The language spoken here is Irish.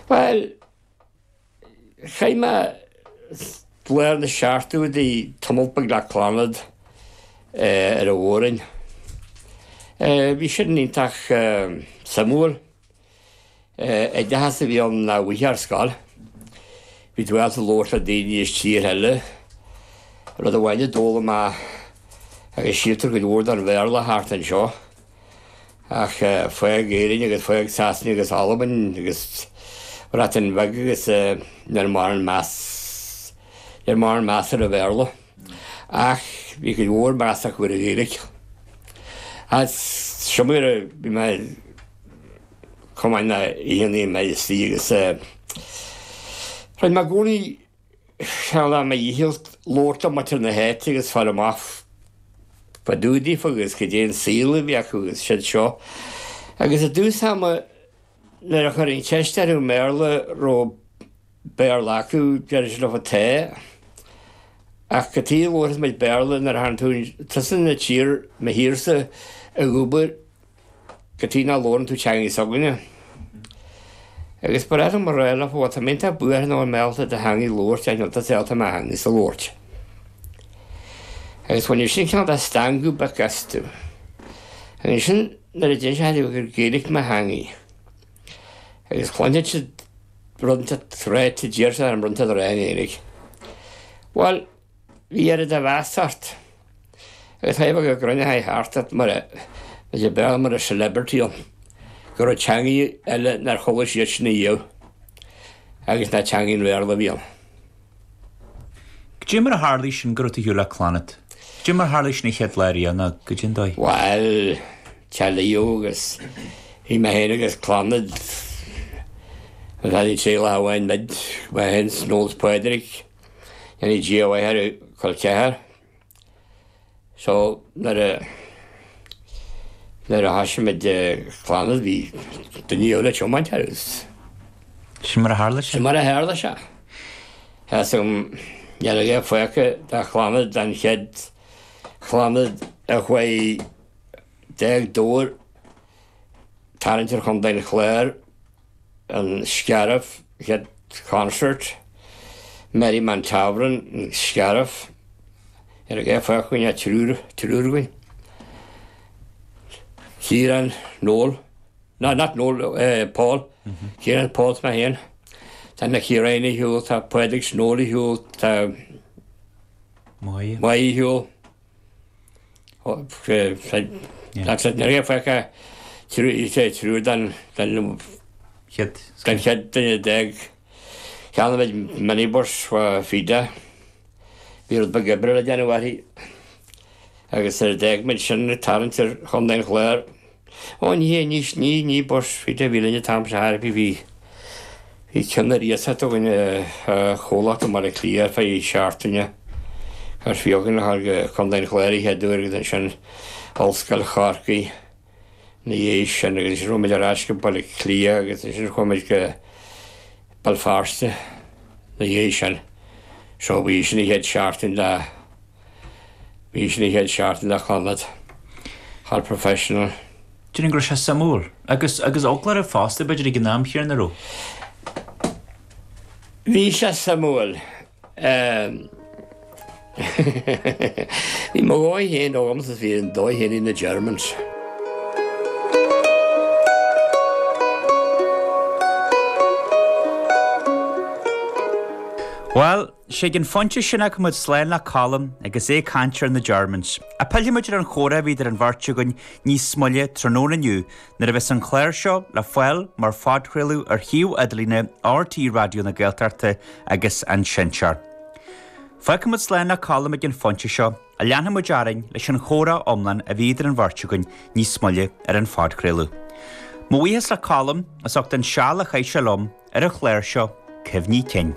Bhuel, chaith mé lár na seachtóidí ag tiomáint thart le Clannad ar an Mhór-roinn. Bhí sin iontach suimiúil. Oideachas a bhí ann nach bhfaighfeá ar scoil. Bhí tú ábalta labhairt le daoine as tíortha eile, rud amháin a d'fhoghlaim mé, agus síltear go leor den Bhéarla thart anseo, Ach fág Éirinn agus fág Sasana agus Albain agus an Bhreatain Bheag agus ní raibh mórán meas, ní raibh mórán meas ar an Bhéarla. Ach bhí cuid mhór meas acu ar an Ghaeilge. Agus so mar a bhí mé ag tiomáint na haon aon mhíle slí agus rinne mé i gcónaí. Seal mo dhícheall labhairt le muintir na háite agus fáil amach fá dtaobh díofa agus cad é an saol a bhí acu agus siúd is seo. Agus i dtús ama nuair a chuirfinn ceist orthu i mBéarla, raibh Béarla acu, deireadh siad liom tá, ach cad chuige a labharfaidh muid Béarla nuair atá tú, tusa ina tír, mo thír-sa, ag obair, Cad chuige nach labhrann tú teanga s'againne? Agus ba ghnách liom a ráit leofa, bhuel, tá mé iontach buartha níl mé ábalta do theangaidh a labhairt ach níl tusa ábalta mo theangaidhsa a labhairt. Agus bhainfeadh sin cineál de stangadh beag astu. Agus ansin nuair a d'inseoinn dóibh gur Gaeilge mo theangaidh, agus chluinfeadh siad rud inteacht ráite d'iarrfadh orm rud inteacht a ráit i nGaeilge. Bhuel, Bhí oiread de mheas ort agus bheadh siad ag cruinniú thart ort mar a bheadh mar a celebrity ann, go raibh teangaidh eile nár chuala siad sin riamh agus nach teangaidh an Bhéarla a bhí ann. Cad é mar a tharlaigh sin go raibh tú thiar le Clannad? Cad é mar a tharlaigh sin an chéad lá riamh, cad é an dóigh? Bhuel, teilíodh agus bhí mé féin agus Clannad, an fear a bhí ag triail a shábháil muid, mé féin, Noel is Pádraig, Go ndéana Dia a mhaith air col ceathar so nuair a, nuair a thoisigh muid Clannad bhí duine eile ag tiomáint agus. Sin mar a tharla sé? Sin mar a tharla sé. Theastaigh uaim, dhéanfadh é faoca dá chlannad, don chéad chlannad a chuaigh d'fhág Dobhar ag tarraingt ar Chontae an Chláir an Scairbh, chéad concert, Merriman Tavern, an Scairbh, níl fágtha againn ach triúr againn, Ciarán, Noel, no not Noel, Pól, Ciarán, Pól is mé féin, tá Nicky Ryan ar shiúl, tá Pádraig 's Noel ar shiúl, tá Moya ar shiúl. Ní fhaca triúr den chéad uair, d'fhág. Cheannaigh muid minibus faoi dheireadh. Bhí rud beag oibre le déanamh uirthi agus nuair a d'fhág muid sin ag tarraingt ar Chontae an Chláir, Ó ní hé, ní sní, ní bus, bhí de mhíle an t-am seo thart, bhí, bhí ceann ar iasacht againn ó chomhlacht i mBaile Átha Cliath ar feadh seachtaine, agus d'fhág muid go Contae an Chláir an chéad uair agus ansin Ollscoil Chorcaí ina dhiaidh sin agus ansin chuaigh muid ar ais go Baile Átha Cliath agus ansin chuaigh muid go Béal Feirste ina dhiaidh sin. So bhí, sin a chéad seachtain le. Bhí sin a chéad seachtain le Clannad professional. Déarfainn go raibh sé suimiúil. Agus, agus foclóra fosta b'fhéidir ag an am, Chiarán, a raibh. Bhí sé suimiúil. Bhí mo dhóigh féin agam agus bhí an dóigh féin ag na Germans. Bhuel. Is ag an phointe sin a fhágfas muid slán le Colm agus é ag caint ar na Germans. Pillfimid ar an chomhrá a bhí idir an bheirt againn níos moille tráthnóna inniu nuair a bheas an clár seo le fáil mar phodchraoladh ar shuíomh idirlíne RTÉ Raidió na Gaeltachta agus an Seinnteoir. Fágfaimid slán le Colm ag an phointe seo agus leanfaimid orainn leis an chomhrá iomlán a bhí idir an bheirt againn níos moille ar an phodchraoladh. Mo bhuíochas le Colm as ucht an seal a chaith sé liom ar an chlár seo, cuimhní cinn.